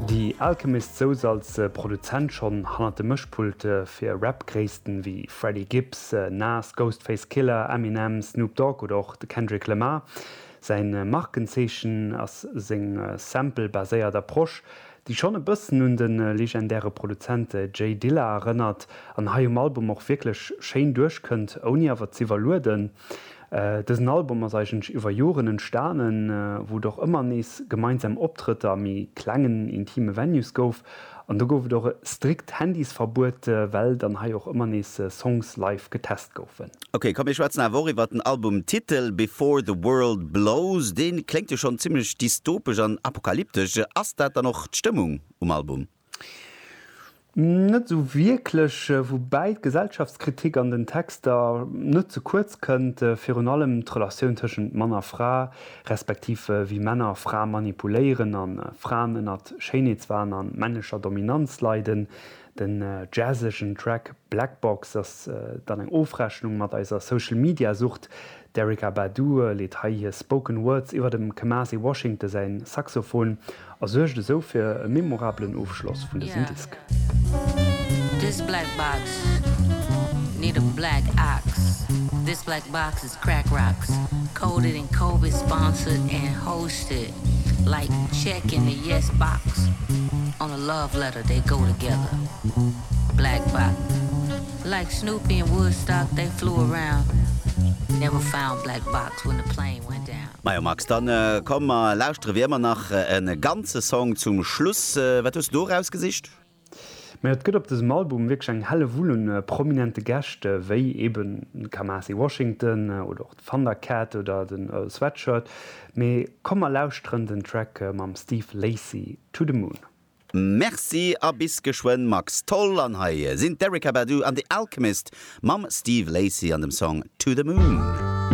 Déi Alchemist souz als Produzent schonn hannert de Mëschpulte fir Rap-Gréissten ewéi Freddie Gibbs, Nas, Ghostface Killah, Eminem, Snoop Dogg oder och de Kendrick Lamar. Säi Markenzeechen ass seng Sample-baséiert Approche, déi schonn e bëssen un de legendäre Produzent Jay Dilla erënnert an hei um Album och wierklech schéin duerchkënnt, ouni awer z'iwwerlueden. Dësen Album ass eigentlech iwwer Joren entstanen, wou et och ëmmer nees gemeinsam Optrëtter a méi klengen, intime Venues gouf. An do gouf et och e strikt Handysverbuet, well dann hei och ëmmer nees Songs live getest goufen. Ok, komm mir schwätzen awer och iwwert den Albumtitel Before the World Blows. Dee kléngt jo schonn zimmlech dystopesch an apokalyptesch. Ass dat dann och d'Stëmmung um Album? Net esou wierklech, woubäi d'Gesellschaftskritik an den Texter net ze kuerz kënnt, virun allem d'Relatioun tëschent Mann a Fra, respektiv wéi Männer Frae manipuléieren a Fraen ënnert Schéinheetswahn a männlecher Dominanz leiden. Den jazzegen Track Black Box ass dann eng Ofrechnung mat eiser Social-Media-Sucht, D'Erykah Badu leet hei hir Spoken Words iwwer dem Kamasi Washington säin Saxophon a suergt esou fir e memorabelen Ofschloss vun dësem Disk. Like Snoopy in Woodstock they flew around Never found black box when the plane went down. Majo Max, dann komm mer lauschteren wéi ëmmer nach en ganze Song zum Schluss. Wat hues du do erausgesicht? Majo et gëtt op dësem Album wierklech eng Hellewull un prominente Gäscht wéi eben de Kamasi Washington oder och d'Thundercat oder den Earl Sweatshirt. Mee komm mer lauschteren den Track mam Steve Lacy To The Moon. Merci a bis geschwënn Max. Toll, an hei sinn d'Erykah Badu an The Alchemist mam Steve Lacy an dem Song To The Moon.